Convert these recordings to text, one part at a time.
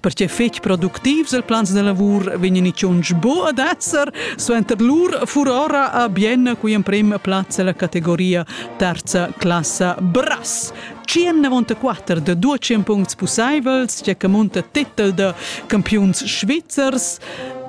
perche fetg productivs il plans de lavur vegnan tschunsch bo ad esser suenter lur furora a bien qui emprem plaz la categoria terza classa brass 194 de 200 puncts pusseivels che che munta titel de campiuns svizzers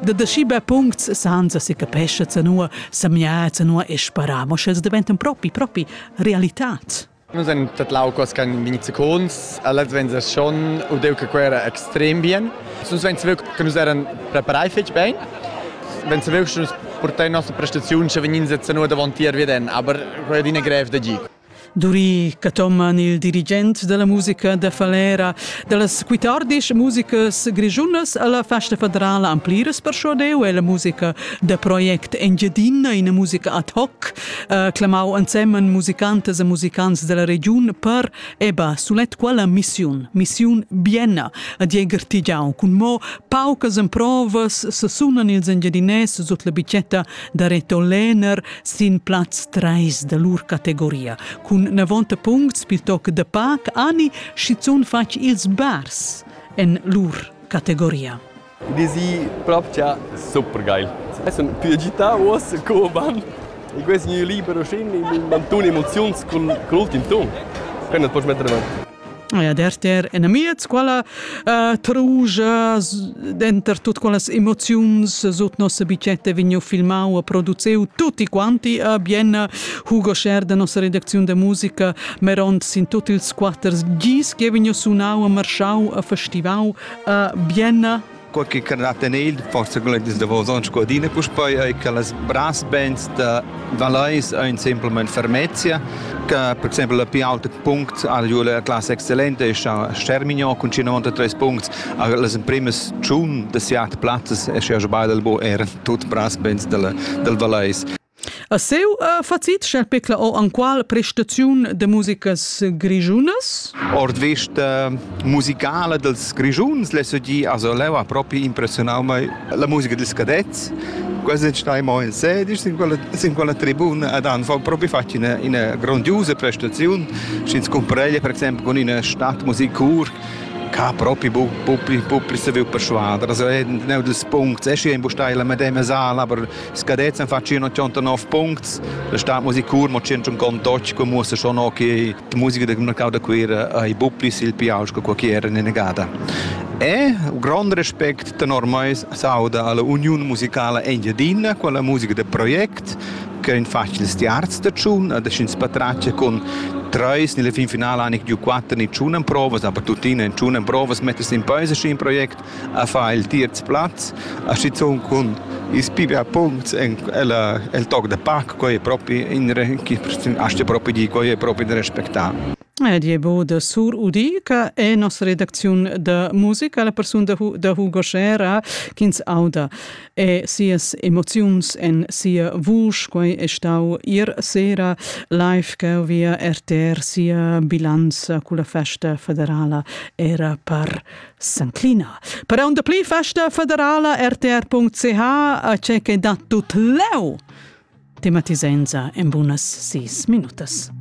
de deschibe puncts sanza si capesce zanua samiaza nua e sparamo sch'els deventan propi propi realitat Nus ein tadlau co scan vegn secons, alles vegn schon u deu che quei era extrem bien. Nus vein saviu che nus eran preparai fetg bein. Vein saviu che nus portai la nossa prestaziun che vegnin sezzanou davon tier veden, aber quei è adina grev da gir. Duri Cathoman, il dirigent della musica da Falera, dallas quittardisch musicas grischunas alla festa federala ampliras per deu e la musica da project Engiadina, ina musica ad hoc eh, clamau ensemen musicantas e musicants della regiun per eba sulet quella missiun, missiun Bienna, a Dieger Tigiau, cun mo paucas emprovas se sunan ils engiadinès sut la bicetta da Reto Lehner sin plaz 3 da lur categoria. Cun 90 puncts piuttoc de pac ani schizun fatg ils bars en lur categoria. Ed esi propcha super geil. Ais sun tü agità uoss co van? E quai es gnü liber uschin in ün mantun emoziuns cun l'ultim tun. Quai nu't poch metter davant. Ja, derter enamiez quella uh, truja denter tut quellas emoziuns sut nossa bicchetta vegniu filmau e produziu tutti quanti a Bienna Hugo Scher da nossa redacziun da musica meront sin tut ils quatter gis che vegniu sunau e marschau a festivau Uh, bienna. Quai che carrà tener forse con les davos onns codina puspei ei che las brass bands da Valeis ein semplicemente fermezia che per esempio la più alta punct al ju la classe excellente ist Stermignon con 93 punts las primas tschun de siat plazzas e sche beide bo er tut brass bands del del Valeis A seu uh, facit sch'el pecla o anqual prestaziun de musicas grischunas? Ord vista musicala dels Grischuns l'he sedi also leu ha propi impressionau mei la musica dels cadets. Quasi stai mo in sedisch sin quella sin quella tribuna ad han propi fatg ina ina grandiosa prestaziun. Sch'ins compareglia per exempel con ina Stadtmusikkur ca propi bu bu pli bu pli saviu perschuader also ein neu dus punts es hier in bustai la medema sala aber Scadets han fatg 89 puncts, la stat musicur mo 158, come muossa schon auch che die Musica del mercato da Cuira ha buplis il piaus che qualche era negada. E un grande respect tenor me sauda alla Union Musicale Engiadina, quella musica de project, che in facile stiarz de tschun, ad scins patracce con treis nelle fin finale anche giù quattro ni tschun provas, aber tuttina in tschun provas mettes in peise in project a far il tierz plaz, a stizun cun is pibia punts en el, el toc de pac, coi è proprio in asta proprio di, coi è proprio da respectare. Ed è bo da Sur Udi, che è nostra redazione de musica, la persona da Hugo Schera, ch'ins auda e sias emozions en sia vuce. Quai è stau ier sera live che via RTR sia bilanza con la festa federala era per S'inclina per aunda pli festa federala rtr.ch a che che dat tut leu tematisenza in bunas sis minutas.